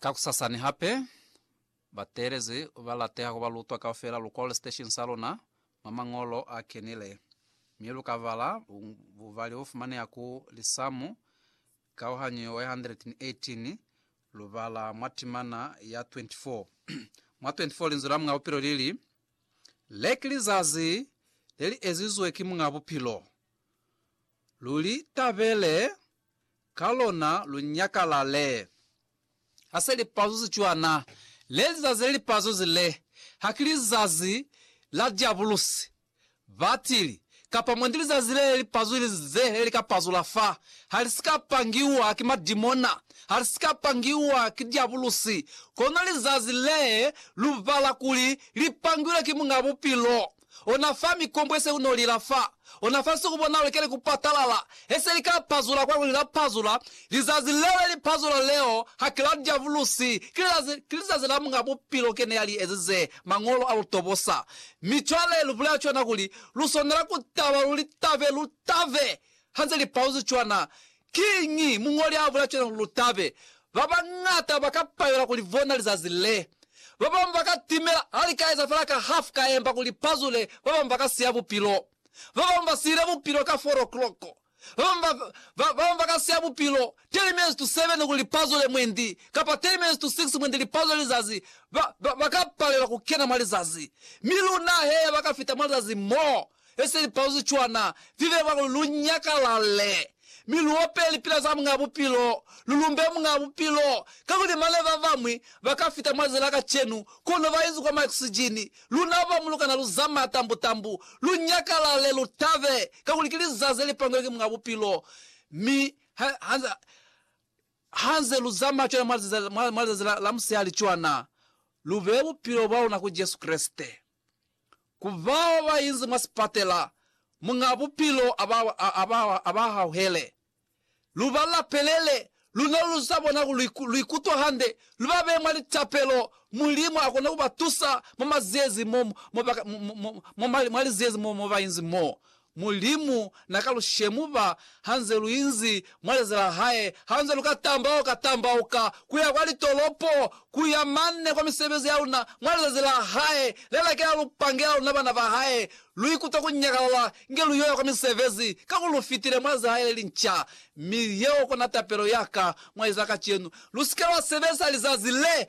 Kakusasani hape, bateelezi ba lateha ku ba lutwa kaufela lu kwale siteshini sa luna mwa Mañolo a Kenile, mi lu ka bala bubali bo fumaneha ku Lisamu kauhanyo ya 118, lu bala mwa timana ya 24. Mwa 24 Linzwi la Muñ'a Bupilo li li, Le ki lizazi le li ezizwe ki Muñ'a Bupilo. Lu li tabele! ka lona lu nyakalale. Ha se lipazuzi cwana, le lizazi le lipazuzi le, haki lizazi la Diabulusi, batili, kapa mwendi lizazi le li pazuzi ze le li ka pazula fa, ha li si ka pangiwa ki madimona, ha li si ka pangiwa ki Diabulusi, kono lizazi le lu bala kuli li pangilwe ki Muñ'a Bupilo. ona fa mikombo ye se ku no lila fa ona fa nsiku bona lukeli ku patalala he se li ka pazula kwa kuli la pazula lizazi leo le li pazula leo ha ki la diavulusi ki lizazi ki lizazi la Muñ'a Bupilo kene ya li ezize Mañolo a lu tobosa mi cwale lu bulela cwana kuli lu swanela ku taba lu li tabe lu tabe ha nze li paluzi cwana Kiñi muñoli a bula cwalo? Lu tabe. Ba bañata ba ka palelwa ku li bona lizazi le. Ba bañwi ba ka timela ha li ka eza fela ka hafu ka emba ku li pazule. Ba bañwi ba ka siya bupilo. Ba bañwi ba sile bupilo ka four o'clock. Ba bañwi ba, ba, ba bañwi ba ka siya bupilo ten minutes to seven ku li pazule mwendi, kapa ten minutes to six mwendi li pazule lizazi. Ba, ba, ba ka palelwa ku kena mwa lizazi. Mi luna, hee, ba ka fita mwa lizazi moo. Esi lipauzi cwana, lileba kuli lu nyakalale, mi lu ope lipila za Muñ'a Bupilo, lu lumbe Muñ'a Bupilo, kakuli mane babañwi ba ka fita mwa zila kacenu, kono ba inzi kwa maoksijini, luna bamu lu kana lu zamaya tambu-tambu. Lu nyakalale, lu tabe, kakuli ki lizazi le li pangwe ki Muñ'a Bupilo. Mi ha, ha, ha nze lu zamaya cwana mwa lizazi, mwa, mwa lizazi la, la musihali cwana, lu beye bupilo bwa luna ku Jesu Kreste. Ku bao ba inzi mwa sipatela, Muñ'a Bupilo a ba hauhele. Lu ba lapelele, luna lu sa bona kuli lu ikutwa hande, lu ba beye mwa litapelo. Mulimu a kona ku ba tusa mwa maziezi mo, mwa liziezi mo ba inzi mo. Mulimu na ka lu shemuba ha nze lu inzi mwa leza la hae, ha nze lu ka tambauka tambauka ku ya kwa litolopo, ku ya mane kwa misebezi ya luna mwa lizazi la hae le la kela lu pangela luna bana ba hae. Lu ikuta ku nyakalala inge lu yo ya kwa misebezi, ka ku lu fitile mwa leza la hae le li nca. Mi yeo kona tapelo ya ka mwa liza la kacenu, Lu si ke lwa sebeza lizazi le